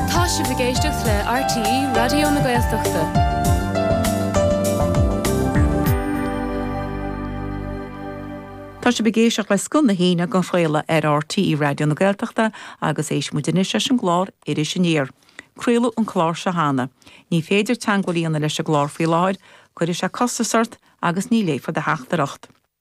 Tá sibh ag éisteacht le RTÉ Raidió na Gaeltachta. Tá sibh ag éisteacht le Scoth na hAoine ag athchraoladh ar RTÉ Raidió na Gaeltachta agus éistfidh muid anois leis an gclár Iris Aniar. Craoladh an clár seo cheana. Ní féidir teagmháil a dhéanamh leis an gclár faoi láthair, cuirfidh sé costas ort agus ní léifear do theachtaireacht.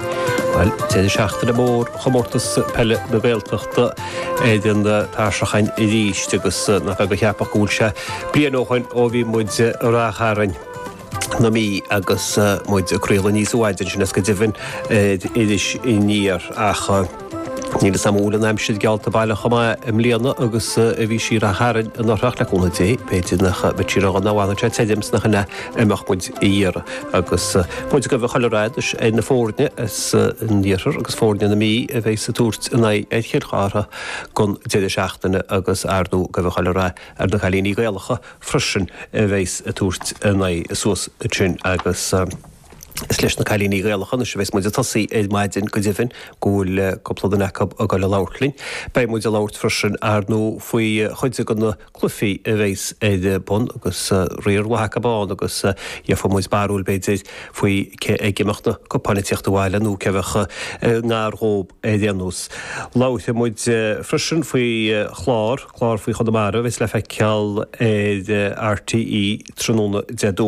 Bhuel, tá deireadh seachtaine mór Chomórtas Peile na Gaeltachta ar an tairseach againn arís agus nach beag a cheapfadh go bhfuil sé bliain ó shoin ó bhí muid i Ráth Chairn na Mí agus muid ag craoladh aníos uaidh ansin is go deimhin ar Iris Aniar ach Níl is cosúil an aimsir geallta baileach chomh maith i mbliana agus a bhí sí i Ráth Chairn anuraidh ach le cúnamh Dé. B'fhéidir nach mbeidh sí ródhona má fhanann sé tirim sin é a mbeadh muid a iarraidh. Agus muid ag guí chuile rath anois ar na foirne san iarthar agus foirne na Mí a bheas ag tabhairt a n-aghaidh ar Chill Chartha don deireadh seachtaine agus ar ndú ag guí chuile rath ar na cailíní Gaelacha freisin a bheas ag tabhairt a n-aghaidh suas ansin agus Is leis na cailíní Gaelacha anois a bheas muid ag tosaí ar maidin, go deimhin, go bhfuil cúpla duine acu ag dul a labhairt linn. Beidh muid ag labhairt freisin, ar ndú, faoi chuid de na cluifí a bheas ar bun agus riar mhaith acu ann agus gheofaidh muid barúil, b'fhéidir, faoi cé aige a mbeadh na cupáin ag tíocht abhaile nó cé a bheadh i ngar dhób ar aon nós. Labharfaidh muid freisin faoi chlár, clár faoi Chonamara a bheas le feiceáil ar RTÉ tráthnóna Dé Domhnaigh.